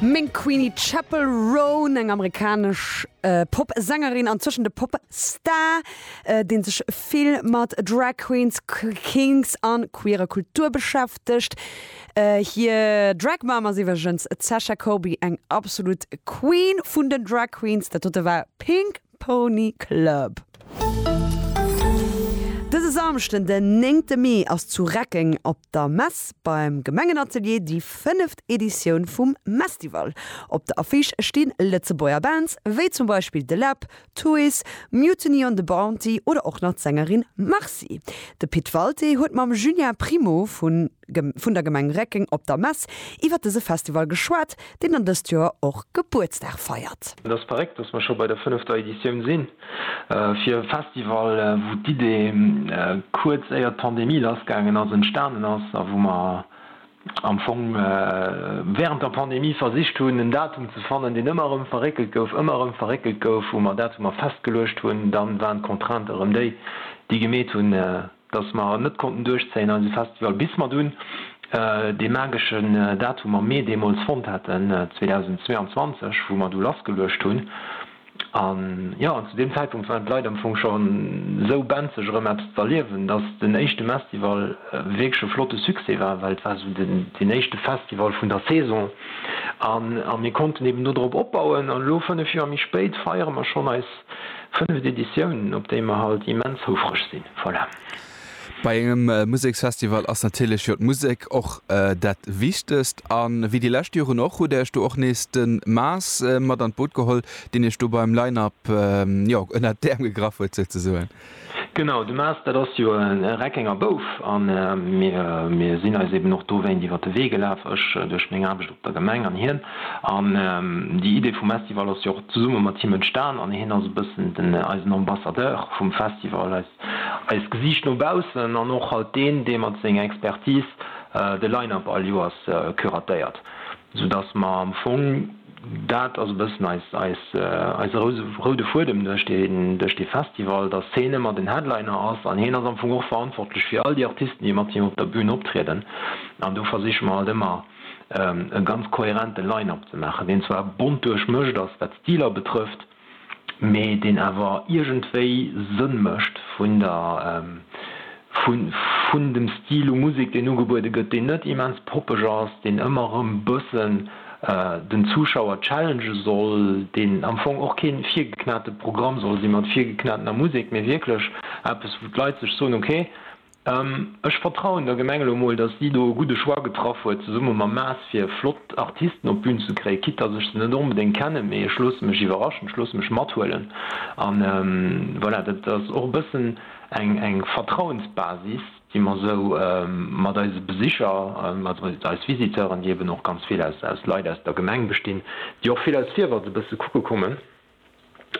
Meng Queenie, Chappell Roan, eng amerikanesch Pop-Sängerin an zwëschen de Pop-Star, dee sech vill mat Drag Queens, Kinks a queerer Kultur beschäftegt. Hir Drag Mom ass iwwergens d'Sasha Colby, eng absolut Queen vun den Drag Queens. Dat dote war Pink Pony Club. Dëse Samschden den 9 te Mee ass zu Reckeng op der Mess beim Gemengenatelier déi fënneft Editioun vum Mestival. Op der Affiche sti Lëtzebuerger Bands wéi zum Beispill De Läb, Tuys, Mutiny on the Bounty oder och nach d'Sängerin Marcy. De Pit Walté huet mam Julien Primo vun. vun der Gemeng Reckeng op der Mess iwwert dëse Festival geschwat, deen dann dëst Joer och Gebuertsdag feiert. Et ass verréckt, datt mer scho bei der fënnefter Editioun sinn. Fir e Festival, wou d'Idee kuerz éier d'Pandemie lassgaangen ass, entstanen ass a wou mer am Fong wärend der Pandemie versicht hunn, en Datum ze fannen, deen ëmmer erëm verréckelt gouf, ëmmer erëm verréckelt gouf, wou mer Datumer festgeluecht hunn, da waren d'Contraintë erëm déi, déi gemeet hunn, dass mer net konnten duerchzéien eise Festival bis mer dunn dee mageschen Datum am Mee deemools fonnt haten, 2022, wou mer du lassgeluecht hunn. An jo, an zu deem Zäitpunkt waren d'Leit am Fong scho sou benzeg erëm eppes z'erliewen, dass den éischte Mestival wierklech e flotte Succès war, well et war sou deen éischte Festival vun der Saison a mir konnten eben do drop opbauen. An elo, fënnef Joer méi spéit, feiere mer schonn eis Fënneft Editiounen, op déi mer halt immens houfreg sinn. Voilà. Bei engem Museksfestival ass natierlech jo d'Musek och dat Wichtegst. A wéi déi lescht Joren och, hutt Där Iech do och nees de Maas mat an d'Boot geholl, deen Iech do beim Line-Up, jo, ënnert d'Äerm gegraff huet souzesoen. Genau, de Maas, dat ass jo e Reckenger Bouf a mir sinn eis eben och dowéint iwwer de Wee gelaf, ech duerch meng Aarbecht op der Gemeng an hien. An déi Idee vum Estival ass jo och zesumme mat him entstan an hien ass e bëssen den, eisen Ambassadeur vum Festival, eist Gesiicht no baussen an och halt deen, dee mat senger Expertise de Line-Up all Joers curatéiert, soudass mer am Fong, Dat ass e bëssen eise roude Fuedem duerch dee Festival, dass heen ëmmer den Headliner ass. An heen ass am Fong och verantwortlech fir all déi Artisten, déi mat him op der Bün optrieden. An do versiche mer halt ëmmer e ganz kohärente Line-Up ze maachen, deen zwar bont duerchmëscht ass, wat d'Stiler betrëfft, mee deen awer iergendwéi Sënn mécht vun der, vun dem Stil u Musek, deen ugebuede gëtt, deen net immens poppeg ass, deen ëmmer erëm bëssen den Zuschauer challenge soll, deen am Fong och kee virgeknate Programm soll si mat virgeknatener Musek, mee wierklech eppes, wou d'Leit sech soen, ok, Ech vertrauen der Gemeng elo mol, dass si do e gudde Choix getraff huet zesumme mam Maas fir flott Artisten op d'Bün ze kréien, quitte dass ech se net onbedéngt kennen, mee ech loosse mech iwwerraschen, ech loosse mech mathuelen an voilà. Dat ass och e bëssen eng Vertrauensbasis, déi mer esou mat eise Besicher, also mat eis Visiteuren, déi eben och ganz vill aus Leit aus der Gemeng bestinn, déi och vill aus Fiewer se bësse kucke kommen.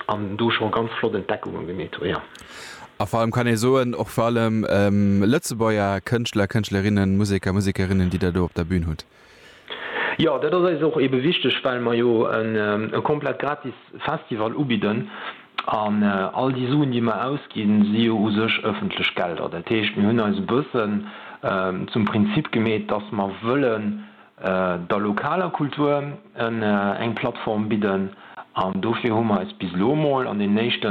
an do scho ganz flott Entdeckungen gemeet hu jo. A vor allem kann ee soen, och vor allem Lëtzebuerger Kënschtler, Kënschtlerinnen, Museker, Musekerinnen, déi Der do op der Bühn hutt. Jo, dat ass eis och ebe wichteg, well mer jo e komplett gratis Festival ubidden an all déi Suen, déi mer ausginn, si jo u sech ëffentlech Gelder. Dat heescht, mir hunn eis e bëssen zum Prinzip gemeet, dass mer wëllen, der lokaler Kultur eng Plattform bidden an dofir hu mer eis bis elo emol an den éischte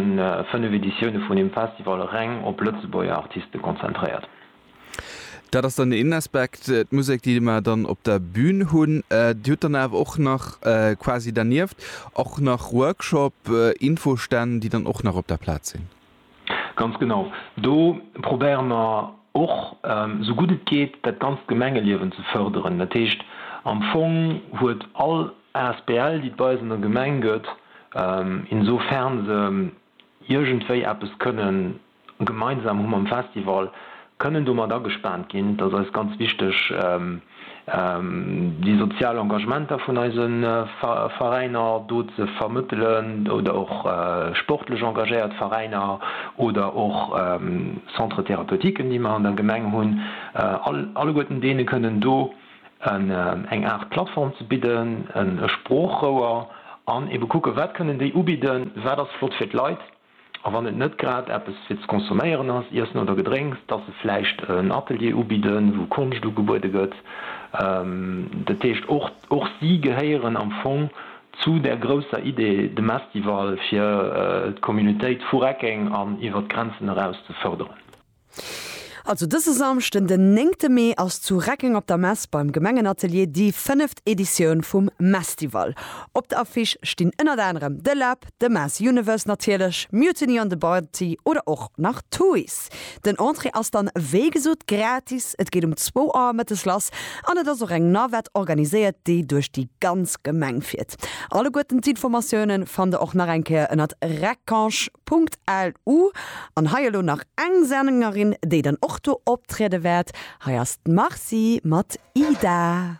5 Editioune vun dem Festival reng op Lëtzebuerger Artiste konzentréiert. Dat ass dann een Aspekt, d'Musek déi mer dann op der Bün hunn. Dir hutt dann awer och nach quasi dernieft och nach Workshop, Infostänn déi dann och nach op der Plaz sinn? Ganz genau. Do probéiere mer och, esou gutt et geet, dat ganzt Gemengeliewen ze fërderen. Dat heescht, am Fong huet all Asbl, déi et bei eis an der Gemeng gëtt, insofern se iergendwéi eppes kënnen gemeinsam hu mam Festival, kënnen domat agespaant ginn, dass eis ganz wichteg déi sozial Engagementer vun eise Veräiner do ze vermëttelen oder och sportlech engagéiert Veräiner oder och Centres thérapeutiques, déi mer an der Gemeng hunn, alleguerten deene kënnen do eng Aart Plattform ze bidden, e Sproochrouer an ebe kucken, wat kënnen déi ubidden, wat ass flott fir d'Leit. A wann et net grad eppes fir ze consomméieren ass, Iessen oder Gedrénks, dass se vläicht en Atelier ubidden, wou Konscht ugebuede gëtt. Dat heescht, och, och si gehéieren am Fong zu där grousser Idee, dem Estival, fir d'Communautéit vu Reckeng an iwwert d'Grenzen eraus ze fërderen. Also dëse Samschden den néngte Mee ass zu Reckeng op der Mess beim Gemengenatelier déi fënneft Editioun vum Mestival. Op der Affiche stinn ënnert anerem The Lab, The Mass Universe natierlech, Mutiny on the Bounty oder och nach Toys. Den Entrée ass dann wéi gesot gratis, et geet um zwou Auer mëttes lass an et ass och eng Navette organiséiert déi duerch déi ganz Gemeng fiert. Alleguerten d'Informatioune fannt der och nach eng Kéier ënnert reckange. LU, An hei elo nach eng Sängerin, déi dann och do optriede wäert. Hei ass d'Marcy mat Ida.